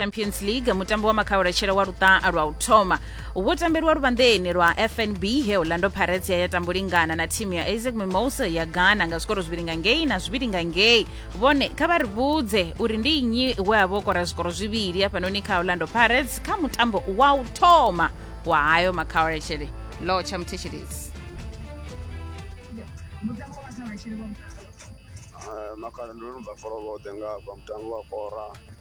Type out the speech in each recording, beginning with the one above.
champions league mutambo wa makhaulatshela wa luṱaha lwa u thoma wo tambelwa luvhanḓeni lwa fnb he orlando pirates ya ya tambulingana na thimu ya isaac mimosa ya ghana nga zwikoro zwivhili nga ngei na zwivhili nga ngei vhone kha vha ri vhudze uri ndi nnyi we a vho kora zwikoro zwivhili hafhanoni kha orlando pirates kha mutambo wa u thoma wa hayo makhaulatshele lo tsha muthetshelezi makhala ndo no bva foroboḓe nga hafha mutambo wa kora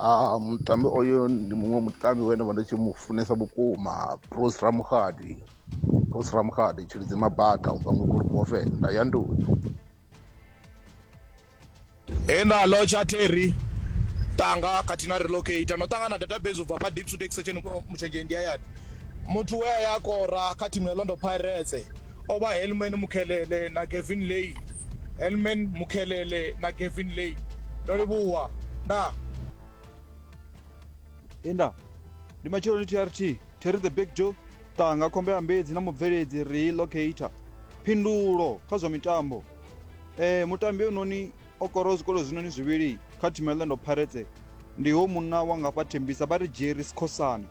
Ah, mutambi oyo ndi muṅwe mutambi we nda vha ndi tshi mu funesa vhukuma bruce ramukgadi bruce ramukgadi tshilidzi mabaka u bva ngobulu bofe nda ya nduni he nda lotsha terry tanga khathihi na relocate no ṱangana database u bva fha deep to take section mushenzhe ndi hayani muthu we a ya kora kha thimu ya londo pirates O vha Helman Mukhelele na Gavin Layne. Helman Mukhelele na Gavin Layne. Ndo livhuwa. Ndaa. He nda. Ndi matsheloni TRT, Terry the Big Joe, Tanga Khombe Ambedzi na mubveledzi Rii Locator. Phindulo kha zwa mitambo. Eh, mutambi ononi o koraho zwikolo zwinoni zwivhili kha thimu ya Orlando Pirates ndi ho munna wa ngafha Thembisa vha ri Jerry Sikhosana.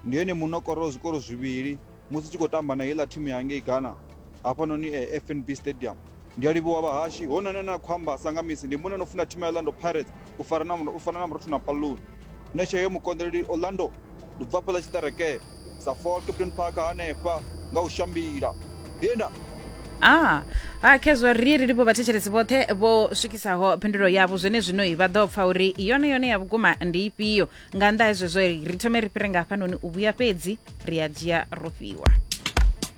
Ndi ene munna o koraho zwikolo zwivhili Musi tshi khou tamba na heiḽa thimu ya ngei Ghana hafhanoni FNB Stadium. Ndi a livhuwa vhahashi, hoyu noni ane a khou amba a sa nga misi ndi muṅwe ane o funa thimu ya Orlando Pirates u fara na u fana na Murothu na Palloon. Nṋe tsheo yo mukonḓeleli Orlando ndi bva hafhaḽa tshiṱerekee sa Fort Captain Park hanefha nga u shambila he nda. A ha Khezwa ri ri livhuwa vhathetshelesi vhoṱhe vho swikisaho phindulo yavho zwenezwino vha ḓo pfa uri yone yone ya vhukuma ndi ifhio nga nnḓa ha zwezwo ri thome ri fhire nga hafhanoni u vhuya fhedzi ri a dzhia ro fhiwa